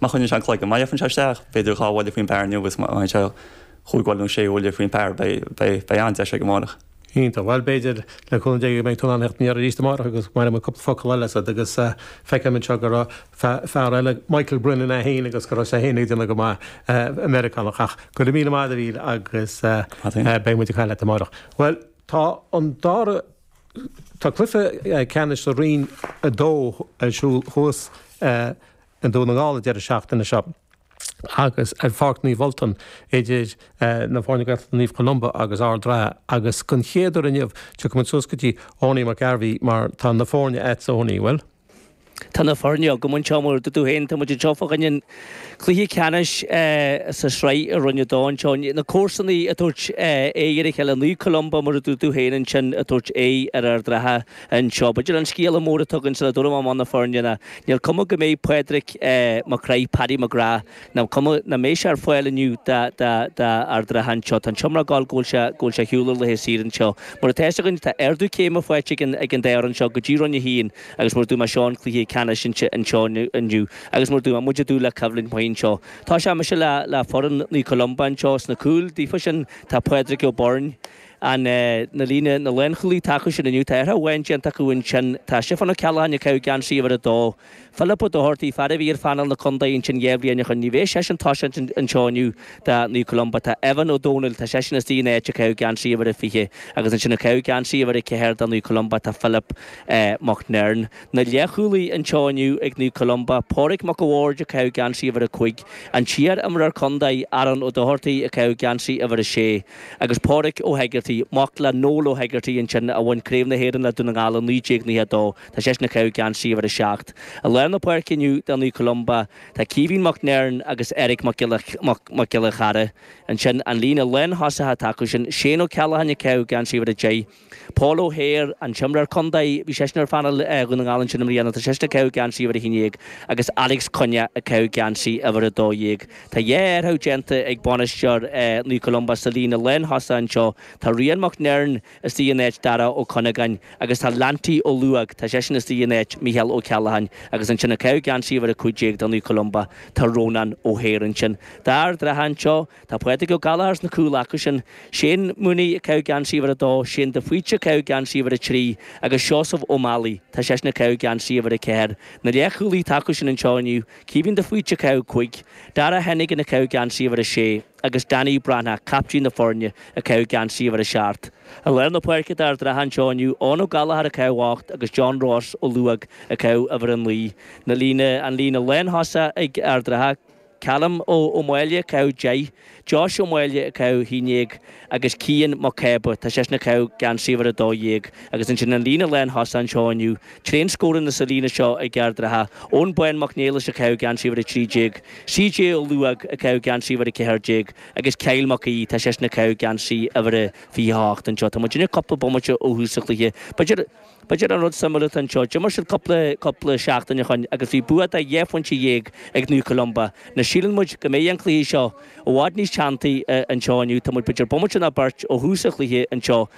Má choinníonn sé an cloigeann, má fhaigheann sé isteach, b'fhéidir dhá bhuille faoin bpar inniu agus má fhaigheann sé chúig bhuille nó sé bhuille faoin bpar, beidh an-deis aige amárach. Iontach. Bhuel, b'fhéidir, le cúnamh Dé, go mbeidh tú in ann é a dhéanamh arís amárach agus bainfidh muid cúpla focal eile asat agus feicim anseo go raibh fear eile, Michael Brennan é féin agus go raibh sé féin ag déanamh go maith, Meiriceánach. Ach go raibh míle maith agat, David, agus beidh muid ag caint leat amárach. Bhuel, tá an dara. Tá cluiche ceannais do Roinn 2 ar siúl thuas i nDún na nGall an deireadh seachtaine seo agus ar Pháirc Naomh Ultan idir na foirne Gaeltachta Naomh Columba agus Ard an Rátha agus don chéad uair inniu tiocfaimid suas go dtí Owenie McGarvey mar tá na foirne agatsa Owenie, an bhfuil? Tá na foirne agam anseo, mar a dúirt tú féin, tá muid anseo fá choinne an chluiche ceannais sa sraith i Roinn 2 anseo. Na comharsanaí ag tabhairt aghaidh ar a chéile, Naomh Columba mar a dúirt tú féin ansin ag tabhairt aghaidh ar Ard an Rátha anseo. B'fhéidir an scéala mór atá againn sula dtabharfaidh mé amach na foirne ná níl cuma go mbeidh Pádraic Mac Craith, Paddy McGrath, Tá cuma nach mbeidh sé ar fáil inniu d'Ard an Rátha anseo. Tá an t-iomrá ag gabháil go bhfuil sé go bhfuil sé ar shiúl ar laethe saoire anseo. Mar atá a fhios againn tá ardú céime faighte ag an ag an dá fhoireann seo go dtí Roinn a hAon agus mar a dúirt mé seo an cluiche ceannais anseo anseo inniu agus mar a dúirt mé muid ag dúil le coimhlint mhaith anseo. Tosóidh mise le le foireann Naomh Columba anseo sna cúil daofa sin tá Pádraic Ó Beirn an eh na líne na lánchúlaí atá acu sin inniu tá athrú amháin déanta acu ansin tá Stiofán Ó Ceallacháin ag caitheamh geansaí uimhir a dó Philip Ó Dochartaigh, fear a bhí ar phainéal na Contae ansin dhá bhliain ó shoin. Ní bheidh seisean ag toiseacht anseo inniu do Naomh Columba. Tá Evan Ó Dónaill, tá seisean istigh ina áit ag caitheamh geansaí uimhir a fiche agus ansin ag caitheamh geansaí uimhir a ceathair do Naomh Columba. Tá Philip Mac Nern, na leathchúlaí, anseo inniu ag Naomh Columba. Pádraig Mac a' Bhaird ag caitheamh geansaí uimhir a cúig. An t-iar-imreoir contae, Aaron Ó Dochartaigh, ag caitheamh geansaí uimhir a sé. Agus Pádraig Ó hEigeartaigh, mac le Noel Ó hEigeartaigh ansin a bhain Craobh na hÉireann le Dún na nGall i 1992. Tá seisean ag caitheamh geansaí uimhir 7. I lár na páirce inniu do Naomh Columba, tá Caoimhín Mac Nern agus Eric Mac Giolla Chearra ansin, an líne leath thosaithe atá acu sin, Shane O'Callaghan ag caitheamh geansaí uimhir 10, Paul O'Hare, an t-imreoir contae, bhí seisean ar phainéal Dhún na nGall ansin i mbliana, tá seisean ag caitheamh geansaí uimhir 11, agus Alex Cunnea ag caitheamh geansaí uimhir 12. Tá dhá athrú déanta ag bainisteoir Naomh Columba sa líne lán thosaithe anseo, tá Rian Mac Nern, istigh in áit Dara Ó Cuinneagáin agus tá Lanty Ó Luaidh, tá seisean istigh in áit Micheál Ó Ceallacháin agus ansin ag caitheamh geansaí uimhir 15 do Naomh Columba tá Rónán Ó hÉir ansin. D'Ard an Rátha anseo tá Pádraig Ó Gallchóir sna cúil acu sin, Shane Mooney ag caitheamh geansaí uimhir 2, Shane de Faoite ag caitheamh geansaí uimhir 3 agus Seosamh Ó Meallaigh, tá seisean ag caitheamh geansaí uimhir 4. Na leath chúlaí atá acu sin anseo inniu, Caoimhín de Faoite ag caitheamh 5, Dara Hennigan ag caitheamh geansaí uimhir 6. agus Danny Breathnach, captaen na foirne, ag caitheamh geansaí uimhir a seacht. I lár na páirce d'Ard an Rátha anseo inniu, Eoin Ó Gallchóir ag caitheamh ocht agus John Ross Ó Luaig ag caitheamh uimhir a naoi. Na líne, an líne lántosaigh ag Ard an Rátha, Calum Ó Máille ag caitheamh deich, Josh Ó Máille ag caitheamh a haon déag agus Cian Mac Cába, tá seisean ag caitheamh geansaí uimhir a dó dhéag, agus ansin an líne lántosaigh anseo inniu, Tréan scóranna sa líne seo ag Ard an Rátha, Eoin Bán Mac Niallais ag caitheamh geansaí uimhir a 13, CJ Ó Luaigh ag caitheamh geansaí uimhir a 14 agus Kyle Mac Aoidh, tá seisean ag caitheamh geansaí uimhir a 28 anseo. Tá muid ag déanamh cúpla bomaite ó thús an chluiche. B'fhéidir, b'fhéidir an rud suimiúil atá anseo, d'imir siad cúpla, cúpla seachtain ó shoin agus bhí bua de dhá phointe dhéag ag Naomh Columba. Ná síleann muid go mbeidh an cluiche seo i bhfad níos teanntaí anseo inniu. Tá muid b'fhéidir bomaite ná beirt ó thús an chluiche anseo.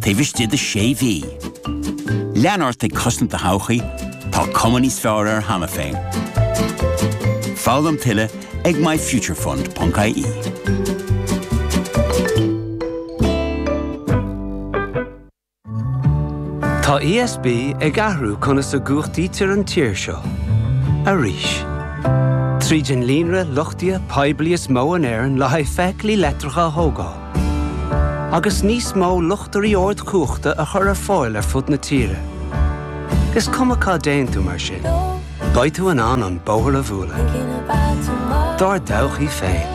taobh istigh de 6 mhí. Lean ort ag cosaint do thodhchaí, tá cuma níos fearr air cheana féin. Foghlaim tuilleadh ag myfuturefund.ie. Tá ESB ag athrú conas a gcumhachtaítear an tír seo. arís. Tríd an líonra luchtaithe poiblí is mó in Éirinn le haghaidh feithiclí leictreacha a thógáil, agus níos mó luchtairí ardchumhachta a chur ar fáil ar fud na tíre. Is cuma cá dtéann tú mar sin, beidh tú in ann an bóthar a bhualadh dár dtodhchaí féin.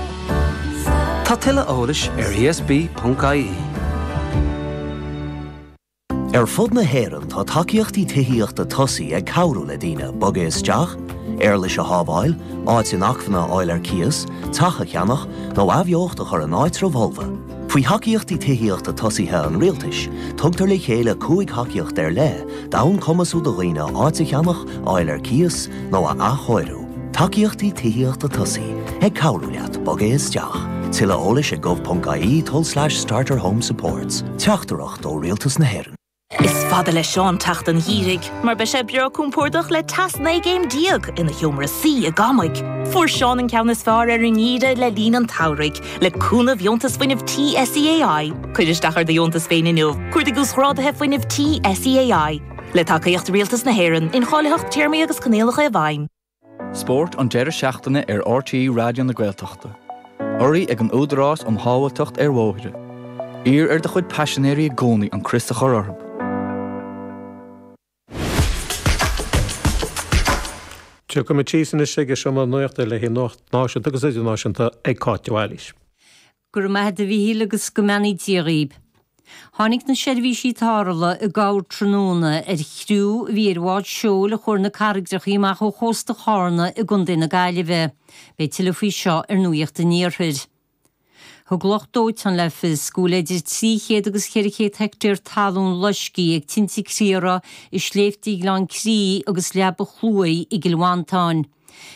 Tá tuilleadh eolais ar esb.ie. Ar fud na hÉireann tá tacaíochtaí tithíochta tosaigh ag cabhrú le daoine bogadh isteach, éarlais a shábháil, áit inacmhainne a fháil ar cíos, teach a cheannach, nó athbheocht a chur in áitribh fholmha. Faoi Thacaíochtaí Tithíochta Tosaithe an Rialtais, tugtar le chéile cúig thacaíocht ar leith d'fhonn cumasú do dhaoine áit a cheannach, a fháil ar cíos, nó a athchóiriú. Tacaíochtaí Tithíochta Tosaigh, ag cabhrú leat bogadh isteach. Tuilleadh eolais ag gov.ie, tulslais, starter-home-supports. Teachtaireacht. ó Rialtas na hÉireann. Is fada le Seán teacht an gheimhridh mar beidh sé breá compordach le teas 19 gcéim ina sheomra suí i gCamaig. Fuair Seán an ceann is fearr ar an ngeimhreadh le linn an tsamhraidh le cúnamh dheontas fuinnimh tí SEAI. Cuir isteach ar do dheontas féin inniu. Cuardaigh uasghráduithe fuinnimh tí SEAI le tacaíocht Rialtas na hÉireann, incháilitheacht téarmaí agus coinníollacha i bhfeidhm. Spórt an deireadh seachtaine ar RTÉ Raidió na Gaeltachta. Urraithe ag an Údarás um Shábháilteacht ar Bhóithre. Iarr ar do chuid paisinéirí i gcónaí an crios a chur orthu. Tiocfaimid síos anois chuig seomra na nuachta le haghaidh Nuacht Náisiúnta agus Idirnáisiúnta ag Cáit de Bhailís. Go raibh maith agat a Mhichíl agus go mbeannaí Dia dhaoib. Tháinig na seirbhísí tarrthála i gcabhair tráthnóna ar chriú a bhí ar bhád seoil a chuaigh ar na carraigreachaí amach ó chósta Chárna i gContae na Gaillimhe. Beidh tuilleadh faoi seo ar Nuaíocht an Iarthair. Thug lucht dóiteáin le fios go bhfuil idir 300 agus 400 heictéar talún loiscthe ag tinte criathraigh i Sléibhte Ghleann Chrí agus Leaba Chluaidh i gCill Mhantáin.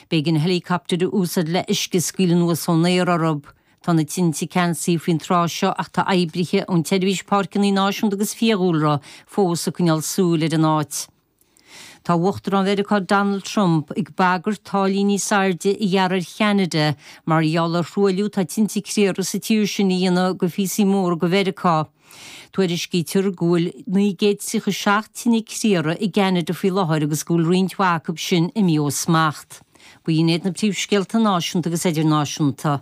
B'éigean héileacaptair a úsáid le uisce a scaoileadh anuas ón aer orthu. Tá na tinte ceansaithe faoin tráth seo ach tá oibrithe ón tSeirbhís Páirceanna Náisiúnta agus Fiadhúlra fós ag coinneáil súil ar an áit. Tá Uachtarán Mheiriceá Donald Trump ag bagairt taraifí níos airde a ghearradh ar Cheanada mar gheall ar thruailliú atá tinte criathraigh sa tír sin a dhéanamh go phíosaí móra go Mheiriceá. Tuairiscítear go bhfuil 937 tine criathraigh i gCeanada faoi láthair agus go bhfuil roinnt mhaith acu sin imithe ó smacht. B'in iad na príomhscéalta náisiúnta agus idirnáisiúnta.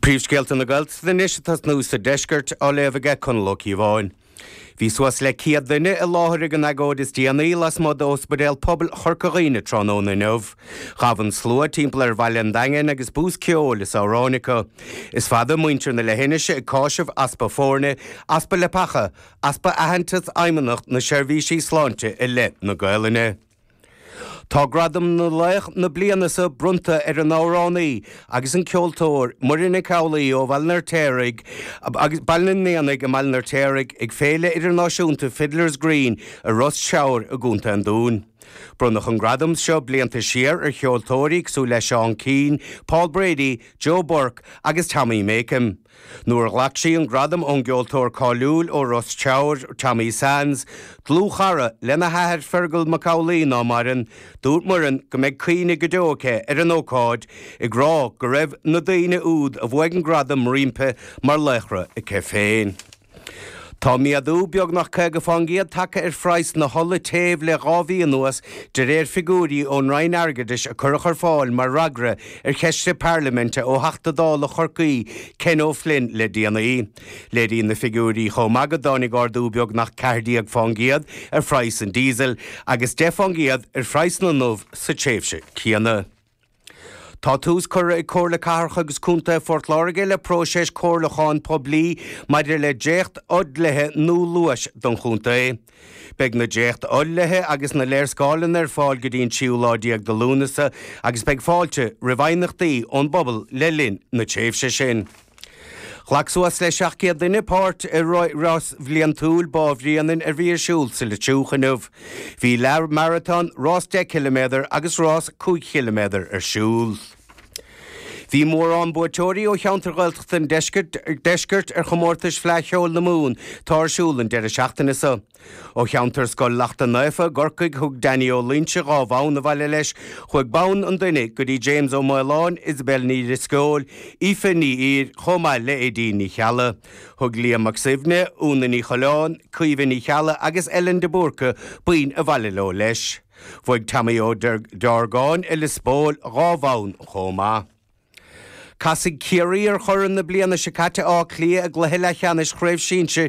Príomhscéalta na Gaeltachta anois a tosnú sa deisceart á léamh aige Conall Ó Cíobháin. Bhí suas le 100 duine i láthair ag an agóid is déanaí lasmuigh d'Ospidéal Pobail Chorca Dhuibhne tráthnóna inniu. Ghabh an slua timpeall ar Bhaile an Daingin agus bús ceoil is amhrán acu. Is fada muintir na leithinise ag cásamh easpa foirne, easpa leapacha, easpa aitheantais Fheidhmeannacht na Seirbhísí Sláinte i leith na Gaolainne. Tá gradam laoch na bliana seo bronnta ar an amhránaí agus an ceoltóir Muireann Nic Amhlaoibh ó Bhaile an Fheirtéaraigh agus Baile an Éanaigh i mBaile an Fheirtéaraigh ag Féile Idirnáisiúnta Fiddler's Green i Ros Treabhair i gContae an Dúin. Bronnadh an gradam seo blianta siar ar cheoltóirí cosúil le Seán Keane, Paul Brady, Joe Burke agus Tommy Makem. Nuair a ghlac sí an gradam ón gceoltóir cáiliúil ó Ros Treabhair, Tommy Sands, dlúthchara lena hathair Feargal Mac Amhlaoibh ná maireann, dúirt Muireann go mbeidh cuimhne go deo aici ar an ócáid, ag rá go raibh na daoine úd a bhuaigh an gradam roimpi mar laochra aici féin. Tá méadú beagnach 50 fán gcéad tagtha ar phraghas na hola téimh le dhá mhí anuas, de réir figiúirí ón Roinn Airgeadais a cuireadh ar fáil mar fhreagra ar cheist parlaiminte ó Theachta Dála Chorcaí Ken O'Flynn le déanaí. Léiríonn na figiúirí chomh maith go dtáinig ardú beagnach 14 fán gcéad ar phraghas an diesel agus 10 fán gcéad ar phraghas na n-ubh sa tréimhse céanna. Tá tús curtha ag Comhairle Cathrach agus Contae Phort Láirge le próiseas comhairliúcháin poiblí maidir le dréachtfhodhlithe nua luais don chontae. Beidh na dréachtfhodhlithe agus na léarscáileanna ar fáil go dtí an tríú lá déag de Lúnasa agus beidh fáilte roimh aighneachtaí ón bpobal le linn na tréimhse sin. Ghlac suas le 700 duine páirt i rás bhliantúil Bá Bhréanainn a bhí ar siúl sa Leitriúch inniu. Bhí leath maratón, rás 10 km agus rás 5 chiliméadar ar siúl. Bhí mórán buaiteoirí ó cheantair Ghaeltachta an Deiscirt ar chomórtais Fleadh Cheoil na Mumhan atá ar siúl an deireadh seachtaine seo. Ó cheantar Scoil Lachtaín Naofa i gCorcaigh, thug Danny Ó Luínse dhá bhonn abhaile leis, chuaigh bonn an duine go dtí James Ó Maoláin, Isobel Ní Dhrisceoil, Aoife Ní Ír, chomh maith le Aedín Ní Cheallaigh. Thug Liam Mac Suibhne, Úna Ní Choileáin, Caoimhe Ní Cheallaigh agus Ellen de Búrca boinn abhaile leo leis. Bhuaigh Tommy Ó Deargáin i Lios Póil dhá bhonn chomh maith. Casfaidh Ciarraí ar churaidh na bliana seo caite, Áth Cliath, i gcluiche leathcheannais Chraobh Shinsir